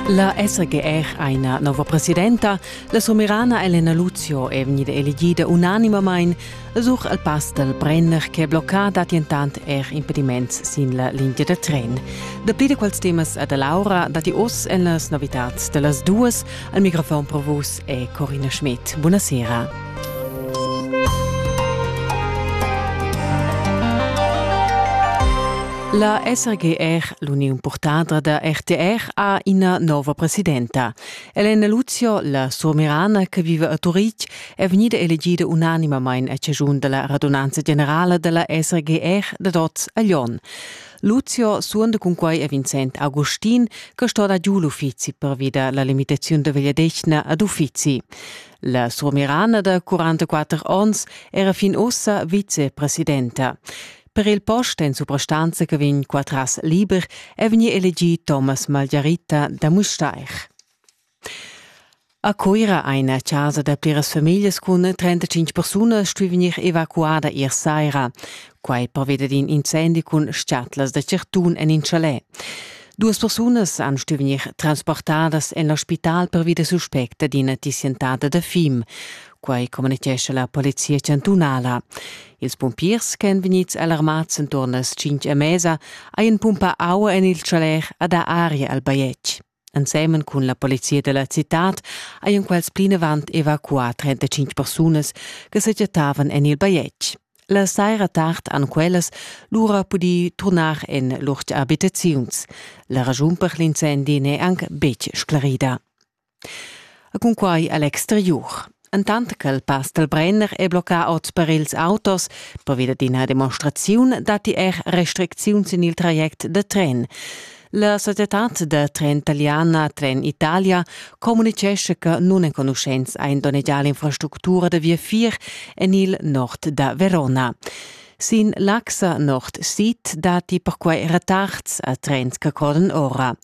La SGR ha ina nova presidenta. La somerana Elena Luzio è vegnida elegida unanimamain sur al pass dal Brenner che blocca dattentant er impediments sin la linea da tren. Dapli da quels temas da Laura datti oz en las novitads da las duas. Al microfon per vus è Corina Schmidt. Buonasera. La SRGR, l'uniun purtadra da RTR, ha ina nova presidenta. Elena Luzio, la surmirana che vive a Turitg, è vegnida elegida unanimamain a cigiun dalla radunanza generala dalla SRGR dad oz a Lyon. Luzio suonda cun quai a Vincent Agustin, che sto da giu l'uffizi pervi da la limitaziun da vegliadetgna ad uffizi. La surmirana da 44 onns era fin ussa vicepresidenta. Per il post en suprastanza che vegn qua tras liber è vegnì elegì Thomas Margarita da Mustair. A Cuira eine casa da pliras famiglie cun 35 persone stuì vegnir evacuada ier saira. Quai perveda d'in incendi cun schatlas da certun en in chalet. Duas persunas han stuì vegnir transportadas en l'ospital pervi da suspecta d'ina tissientada da fim. Quai communitgescha la polizia chantunala. Ils pumpiers ch'èn vegnids alarmads enturn las tschintg e mesa hajan pumpà aua en il chaler ad aria al bajetg. Ensemen cun la polizia da la citad hajan quels plinavant evacuà 35 persunas che sa chattavan en il bajetg. La saira tard han quellas lura pudì turnar en lur abitaziuns. La ragiun per l'incendi n'è anc betg sclarida. Cunquai a l'exteriur. Entant ch'el pass dal Brenner è bloccà oz per ils autos, pervi d'ina demonstraziun datti er restricziuns en il traject da tren. La societad da tren taliana Tren Italia communitgescha che nunenconuschents ein donnegiar l'infrastructura da viafier en il nord da Verona. Sin l'Axa Nord-Sid datti perquai retards a trens che corren ora.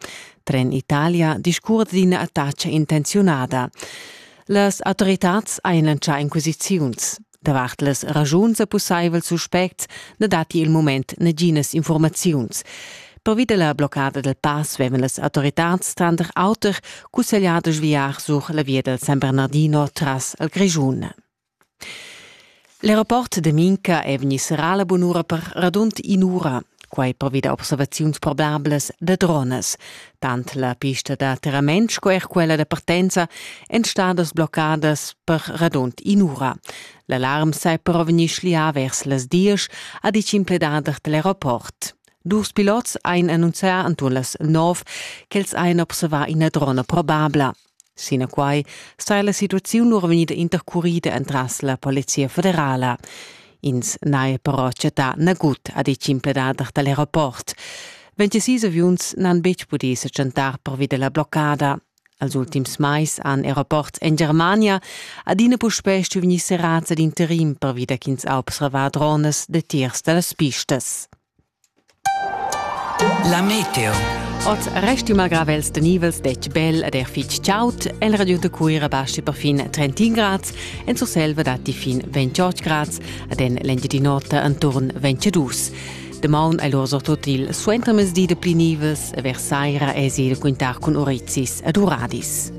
Tren Italia discurre d'ina attacca intenziunada. Las autoritads ein lancià inquisiziuns. Davart las ragiuns e pussaivel suspects na datti il mument naginas informaziuns. Pervi della bloccada del pass vevan las autoritads tranter auter cussegliadas viar sur la via del San Bernardino tras al Grischun. L'aeroport de Minca è vegni serrà la bunura per radund in'ura, quai pervi da observaziuns probablas da drones. Tant la pista da terrament sco er quella da partenza èn stadas bloccadas per radund in'ura. L'alarm sai però vegnir schlià vers las diesch, ha ditg in pledader da l'aeroport. Dus pilots ein annunzià attual las nov ch'els ein observà ina drona probabla. Sinaquai saja la situaziun or vegnida intercurida entras la Polizia federala. Ins n'haja però chattà nagut, ha ditg in pledader da l'aeroport. 26 aviuns n'han betg pudì sa chantar pervi da la bloccada. Als ultims mais han aeroports en Germania adina puspè stuì serrads ad interim pervi da ch'ins ha observà dronas datiers da las pistas. La meteo. Oz restima gravels de nivels detg bel ed er fitg chaud. El radio de Cuira baschi perfin 30 grads, en Surselva datti fin 28 grads ed en l'Engiadin'Ota enturn 22. Damaun è l'or surtut il suentermezdi de pli nivels e vers saira èsi il quintar cun Orizis ed Uradis.